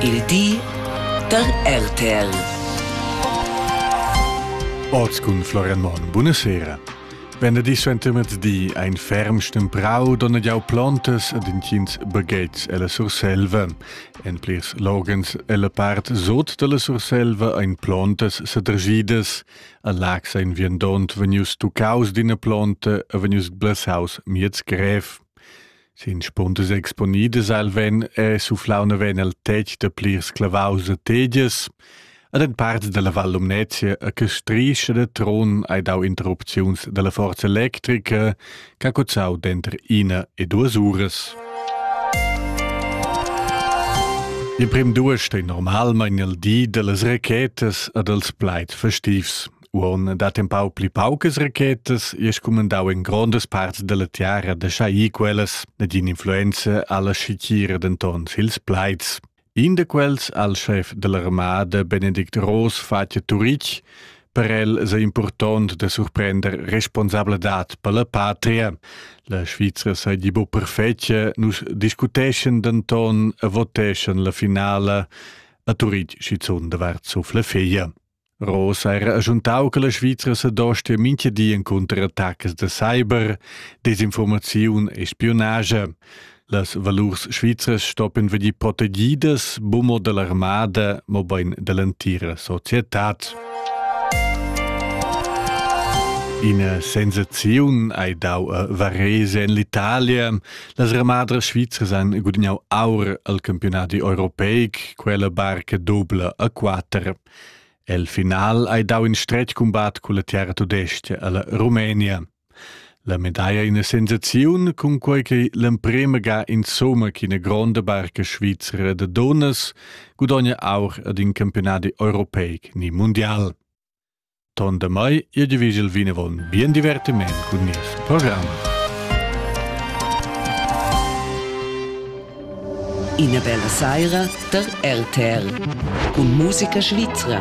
Il di da RTL. Oz cun Florian Monn. Buonasera. Venerdì suentermettì ein ferm stemprau donn jau plantas ad intgins baghetgs ella Surselva. En plirs logens ella part sot dalla Surselva ein plantas sedrgidas. A Lax ein viandont vegnius tuccaus d'ina planta e vegnius blasaus miez grev. Sin spundas exponidas al ven è suflau naven el tetg da plirs clavaus e tegias. Ad en parts dalla Val Lumnezia a che strischa de tron hai dau interrupziuns dalla forza electrica che ha cozzau denter ina e duas uras. Il prim duas stei normalmein el di dallas rachetas e dals plaid festivs. Uon dat empau pli paucas rachetas e scumandau en grondas parts dalla tiara da schai quellas ed influenza alla schicira denton sils plaids. In da quels, al chef dell'armada Benedict Ross, fatja Turic, per el sei important da surprender responsabladad per la patria. La Svizra sei di bu perfetja, nus discuteschen denton e voteschen la finala a Turic schizun davart suf la figlia. Rosa era agiuntau che la Svizra sedostia mintga di encunter attacas da cyber, desinformaziun e spiunage. Las valurs svizras stoppen vegnir protegidas bumo dall'armada, mobein dall'entira societad. In sensaziun hai dau a Varese en l'Italia. Las armadras svizras han gudagnau aur al campionat europeic, quella barca dubla a quatter. El final hai dau in stretg cumbat culla terra tudestga alla Rumenia. La medaglia ina sensaziun cun quei che l'emprema ga insomma che ina gronda barca svizra de donas gudogna aur ad in campionat europeic ni mundial. Ton damai ir divigel vinavon. Bien divertiment cun nies program. Ina bella saira der RTL cun musica svizra.